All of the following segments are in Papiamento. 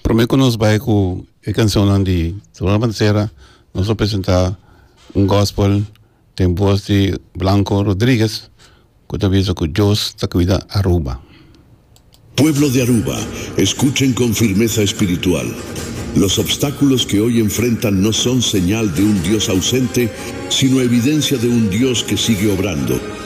Prome ku nos bai ku e kanshonnan di Ronald Balmaceda nos lo presenta un gospel den bos di Blanco Rodriguez ku ta bisa ku Dios ta kuida Aruba. Pueblo de Aruba, escuchen con firmeza espiritual. Los obstáculos que hoy enfrentan no son señal de un Dios ausente, sino evidencia de un Dios que sigue obrando.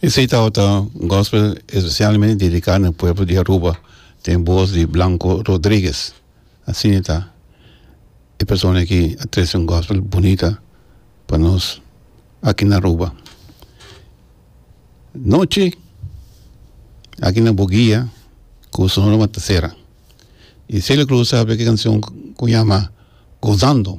Esei tawata un gospel especialmente dedica na pueblo di Aruba den voz di Blanco Rodriguez asina ta e persona aki a trece un gospel bunita pa nos aki na Aruba nochi aki na bugia cu sonora matasera y Celia Cruz a sabe ki cancion cu yama gozando.